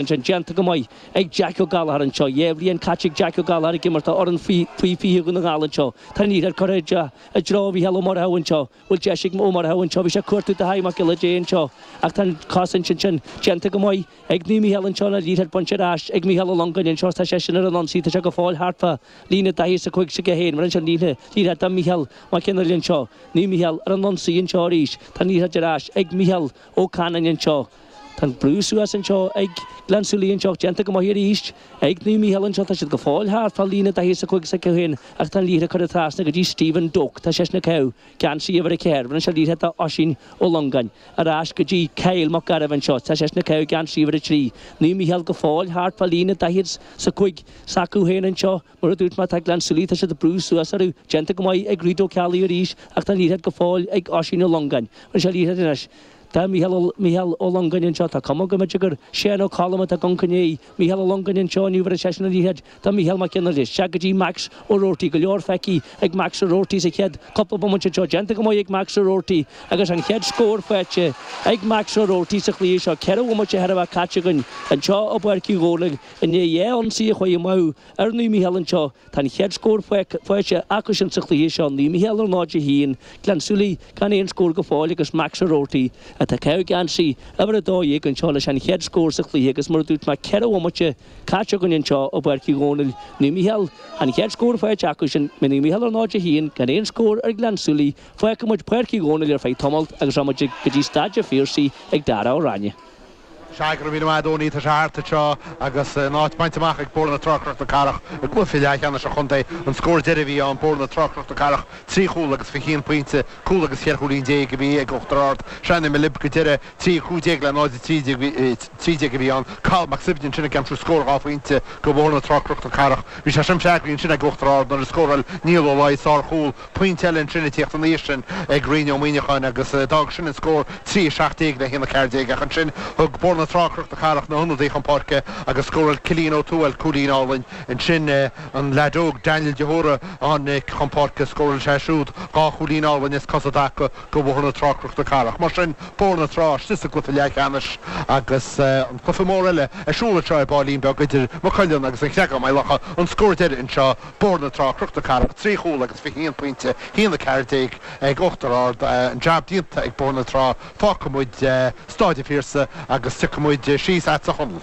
Ansin, déanta go maith ag Jeaic Ó Gallachar anseo. Dhá bhliain caite ag Jeaic Ó Gallachar ag imirt do fhoireann faoi 20 Dhún na nGall anseo. Tá an liathróid curtha i dtreo Mhícheál Ó Murchadha anseo. Bhfuil deis ag Ó Murchadha anseo. Bhí sé ag cuartú Dáithí Mac Giolla Dé anseo ach tá an cás ansin sin. Déanta go maith ag Naomh Mícheál anseo an liathróid bainte ar ais ag Mícheál Ó Longáin anseo is tá seisean ar an ionsaí. Tá sé go fóill thart fá líne 40 's a 5, bheireann sé an liathróid do Mícheál Mac Fhionnghaile anseo. Naomh Mícheál ar an ionsaí anseo arís. Tá an liathróid ar ais ag Mícheál Ó Canainn anseo. Tá an brú suas anseo ag Gleann tSúilí anseo ach déanta go maith arís ag Naomh Mícheál anseo. Tá siad go fóill thart fá líne 40 's a 5 s'acu féin ach tá an liathróid curtha trasna go dtí Stephen Doak. Tá seisean ag caitheamh geansaí uimhir a ceathair. Bheireann sé an liathróid do Oisín Ó Longáin. Ar ais go dtí Kyle Mac Gairbh anseo. Tá seisean ag caitheamh geansaí uimhir a trí. Naomh Mícheál go fóill thart fá líne 40 's a 5 s'acu féin anseo. Mar a dúirt mé tá Gleann tSúilí, tá siad ag brú suas orthu, déanta go maith ag Reid Ó Ceallaigh arís ach tá an liathróid go fóill ag Oisín Ó Longáin. Bheireann sé an liathróid anois. Tá Mícheál Ó, Mícheál Ó Longáin anseo, tá cuma go mb'fhéidir gur Seán Ó Colm atá ag gabháil i gcoinne Mícheál Ó Longáin anseo inniu bheir seisean an liathróid do Mícheál Mac Fhionnghaile anseo go dtí Max Ó Roarty. Go leor feicthí ag Max Ó Roarty sa chéad cúpla bomaite anseo. Déanta go maith ag Max Ó Roarty agus an chéad scór faighte ag Max Ó Roarty sa chluiche seo. Ceithre bhomaite chóir a bheith caite againn anseo i bPáirc Uí Dhomhnaill i ndiaidh dhá ionsaí a chuaigh amú ar Naomh Mícheál anseo. Tá an chéad scór faighte acusan sa chluiche seo, Naomh Micheál 0-1, Gleann tSúilí gan aon scór go fóill agus Max O'Rourty, atá ag caitheamh geansaí uimhir a dó dhéag anseo, leis an chéad scór sa chluiche agus mar a dúirt mé ceithre bhomaite caite againn anseo i bPáirc Uí Dhónaill, Naomh Micheál an chéad scór faighte acusin, Naomh Micheál 0-1 gan aon scór ar Ghleann tSúilí, fágfaidh muid Páirc Uí Dhónaill ar feadh tamaillt agus rachaidh muid go dtí Staid a' Phiarsaigh ag Darragh Ó Ráinne. Sea, go raibh míle maith agat, Owenie, tá sé thart anseo agus an áit bainte amach ag Bóthar na Trá Cnoc na Cathrach i gcluiche leathcheannais an chontae. An scór deiridh a bhí ann, Bóthar na Trá Cnoc na Cathrach trí chúl agus fiche aon pointe, cúl agus cheithre chúilín déag a bhí ag Uachtar Ard. Sea, nuair a bhí mé libh go deireadh, 3:15 le 0:13 a bhí ann. Cathal Mac Suibhne ansin ag aimsiú scór dhá phointe go Bhóthar na Trá Cnoc na Cathrach. Bhí sé sin freagraithe ansin ag Uachtar Ard nuair a scóráil Niall Ó Laoi sár chúl pointe eile ansin ag tíocht ina dhiaidh sin ag Ryan Ó Muineacháin agus d'fhág sin an scór trí 17 le haon a ceathair déag ach ansin thug Bóthar na Trá Cnoc na Cathrach na hionadaithe chun páirce agus scóráil Cillian Ó Tuathail cúilín álainn ansin an leaid óg Daniel de hÓra a tháinig chun páirce scóráil sé siúd dhá chúilín álainn as cosa i dtaca go Bhóthar na Trá Cnoc na Cathrach mar sin Bóthar na Trá istigh sa gcluiche leath cheannais agus an cluiche mór eile ar siúl anseo ar baillín beag idir Maigh Cuilinn agus an Creagán Maigh Locha an scór deiridh anseo. Bóthar na Trá Cnoc na Cathrach, trí chúl agus fiche haon pointe, haon a ceathair déag ag Uachtar Ard. An jab déanta ag Bóthar na Trá. Fágfaidh muid Stáid an Phiarsaigh agus tiocfaidh muid síos agatsa, a Chonaill.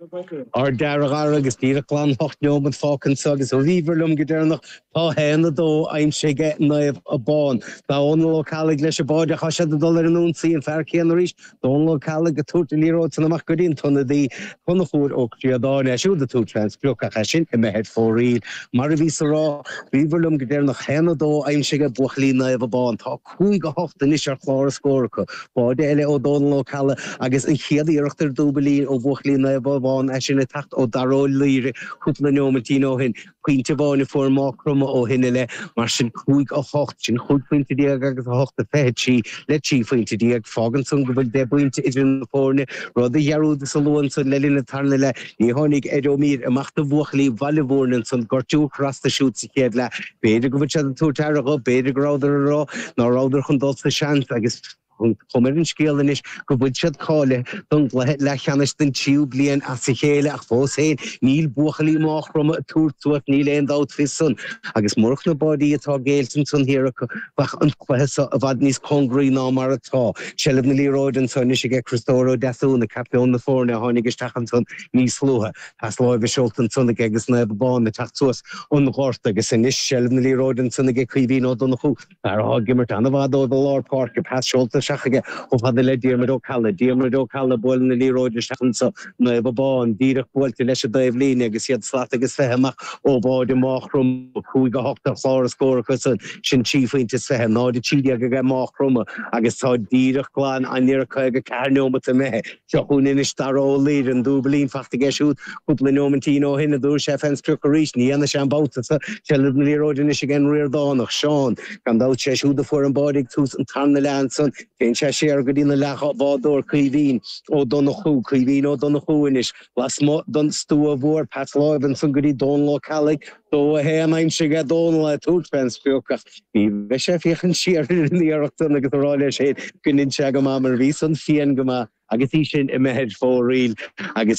Ardfhear, a Dhara, agus díreach glan ocht neomat fágtha anseo agus ó bhíobhair liom go deireanach tá haon a dó aimsithe aige Naomh Abán. Dónal Ó Ceallaigh leis an báide Tá siad ag dul ar an ionsaí, an fear céanna arís Dónal Ó Ceallaigh ag tabhairt an liathróid san amach go dtí an t-ionadaí, Conchúr Ó Críodáin. É siúd ag tabhairt fén sprioc ach é sin imithe ar fóraoil. Mar a bhíos ag rá, ó bhíobhair liom go deireanach 1, 2 aimsithe ag buachaillí Naomh Abán. Tá 5, 8 anois ar chlár na scór acu. Báide eile ó Dónal Ó Ceallaigh agus an chéad iarracht ar dúbailín ó bhuachaillí Naomh Abán, é sin ag teacht ó Daire Ó Laoire cúpla neomaitín ó shin. Pointe amháin a fuair Mágh Chromtha ó shin i leith, mar sin, 5, 8. Sin chúig phointe déag agus 8 a 23 le trí phointe déag. Fágann san go bhfuil deich bpointe idir na foirne, rud a dhearúdas a lua ansan le linn an tarna leath. Ní tháinig Ed Ó Mír amach do bhuachaillí Bhaile Bhúirne ansan, gortú ag cur as dó siúd sa chéad leath. B'fhéidir go bhfuil siad ag tabhairt aire dhó, b'fhéidir go rabhadar ag rá ná rabhadar chun dul sa seans agus. Tá an chuma ar an scéal anois go bhfuil siad cáilithe don gcluiche leathcheannais don tríú bliain as a chéile ach fós féin níl buachaillí Mháigh Chromtha ag tabhairt suas, níl aon dabht faoi san, agus murach na báidí atá géillte ansan thiar acu bheadh an cluiche so i bhfad níos cóngaraí ná mar atá. Seilbh na liathróide anso anois aige Criostóir Ó Deasúna, captaen na foirne, a tháinig isteach ansan níos luaithe. Pas láimhe seolta ansan aige agus Naomh Abán ag teacht suas an gort agus anois seilbh na liathróide ansan aige Caoimhín Ó Donnchú, Fear atá ag imirt an-mhaith dóibh i lár páirce, pas seolta isteach aige chomh fada le Diarmuid Ó Ceallaigh, Diarmuid Ó Ceallaigh buaileann an liathróid isteach anso, Naomh Abán, díreach buailte leis an dtaobhlíne agus iad slat agus fiche amach ó bháide Mágh Chromtha, 5-8 ar chlár na scór acu san, sin trí phointe is fiche, 0-13 ag Mágh Chromtha agus tá díreach glan i ndáiríre 54 neomat imithe. Seo chugainn anois Dara Ó Laoire, an dúbailín fachta aige siúd cúpla neomaitín ó shin. An dtabharfaidh sé fén sprioc arís, ní dhéanfaidh sé an babhta so seilbh na liathróide anois aige an Ríordánach, Seán. Gan dabht sé siúd a fuair an báide ag tús an tarna leath ansan. Téann sé siar go dtí a leathbhádóir Caoimhín Ó Donnchú, Caoimhín Ó Donnchú anois, lasmuigh don stua mhór, pas láimhe ansan go dtí Dónal Ó Ceallaigh, Dó a haon aimsithe aige Dónal ag tabhairt fén sprioc ach ní bheidh sé ag féachaint siar ar an iarracht san agus ag rá leis féin go ndein sé go maith mar bhí san fiáin go maith agus í sin imithe ar fóraoil agus